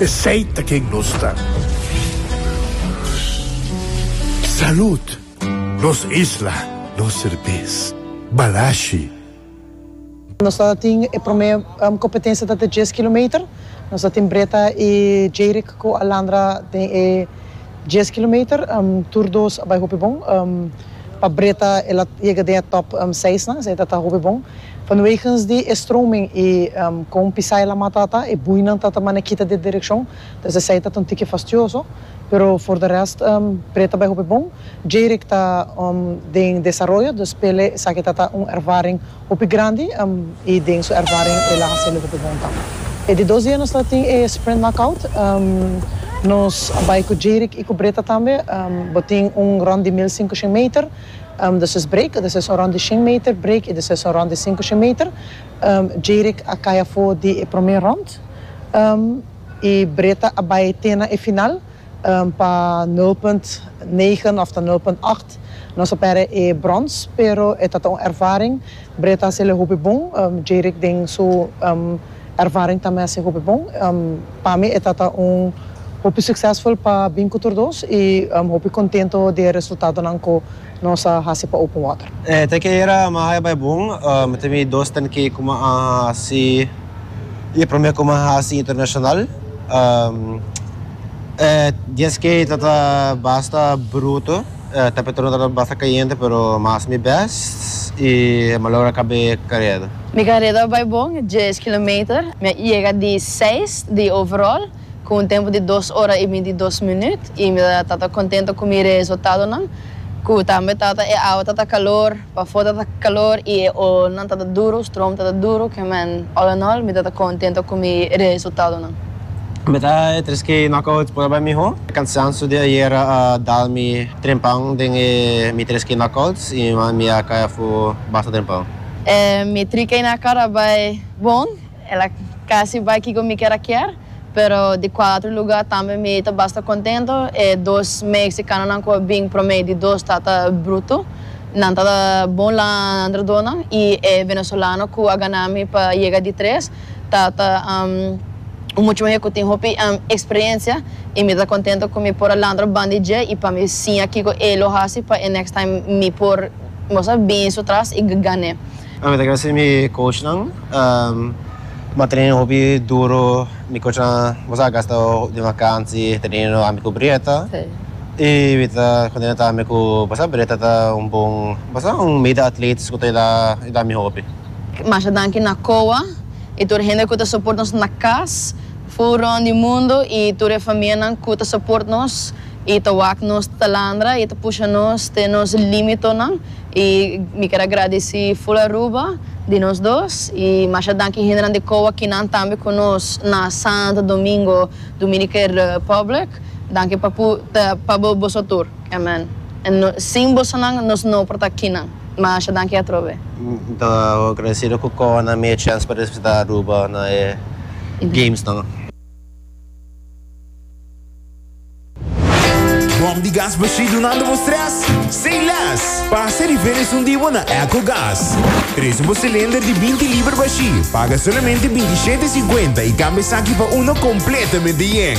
Esey ta ken nos ta. Salud! Nos isla, nos serbes. Balashi. Nos ta tin e prome competencia ta te dies kilometer nos ta tin Breta y Jayrick cu Alandra den e dies kilometer tur dos a bay hopi bon pa Breta ela yega den e top seis nan esey ta ta hopi bon Vanwegens di e stroming i kon pisá e lamá tata, e buinan tata mane kita di e direkshon, dus esei tata un tiki fastioso, pero for de rest pre ta bai hopi bon. Jayrick ta den desaroyo, dus p'e esaki tata un ervaring hopi grandi i den su ervaring el a hasélo hopi bon ta. E di dos dia nos ta tin e sprint knockout, nos a bai ku Jayrick i ku Britta tambe, bo tin un ròn di mil sinkoshen meter. De ses break, de ses orond di shen meter break i de ses orond di sinku shen meter, Jerick a kai afo di e prome rond i Breda a bai te na e final pa nul punt negen òf ta nul punt acht. Nos a pèrdè e brons, pero e ta ta un ervaring. Breda a hasi el e hopi bon, Jerick den su. Ervaring ta mester hopi bon. Pa mi e tata un hopi suksesful pa bin ku tur dos i hopi kontento di e resultadonan ku nos a hasi pa Open Water. E ta ke era mi a haya bai bon. Mi ta mira dos ten ke kuma a hasi i e prome kuma a hasi internashonal. E dies ke ta ta basta bruto. Temperaturan ta ta basta kayente pero mi a hasi mi bèst i mi a logra kabe e kared. Mi careda a bai bon dies kilometer. Mi a yega di seis di overall cu un tempo di dos ora y binti dos minuut y mi ta tata contento cu mi reesultadonan. Cu tambe tata e awa tata calor, pafo tata calor y e oolnan tata duro, stroom tata duro, ke man all in all mi tata contento cu mi reesultadonan. Mi ta e tres ke knockout por a bai miho. E cansanso di ayera a dal mi trempan den e mi tres ke knockouts y mi a cay afu basta trempan. E mi trica y na car a bay bon, el a casi bay kico mi kier a kier, pero di cuatro lugar tambe mi ta basta contento, e dos Mexicanonan cu a bin prome di dos ta ta bruto, nan ta ta bon landradonan y e Venezolano cu a gana mi pa yega di tres ta ta un mucho muher cu tin hopi experiencia y mi ta contento cu mi por a landra bandi dje y pa mi siña kico e lo haci pa e next time mi por Bo sa bini su tras y gane. Mi ta gracia mi coach nan ma training hopi duro mi coach nan bo sa a gasta den vakansi training no ami cu Brietta y mi ta contenta tambe cu bo sa Brietta ta un bon bo sa un meda atletas cu ta yudá yudá mi hopi. Masha danki na Coa y tur hende cu ta support nos na cas. Fu rond di mundo i tur e famianan ku ta soport nos i ta wak nos talandra i ta pusha nos te nos limitonan i mi keda gradisi ful Aruba di nos dos i masha danki hendenan di kowa kinan tambe ku nos na Santo Domingo Dominican Republic danki papu ta pa boso tur amen en sin bosonan nos no por ta kinan. Masha danki atrobe. Mi ta agradecido cu Coa nan mi e chance pa representa Aruba na e games nan. Bom di gas bashí dunando bo stress? Say less! Pasa e diferens un di bo na Ecogas. Trece bo cilinder di binti liber bashí, paga solamente binti shete cincuenta y cambia esaki pa uno completamente yen.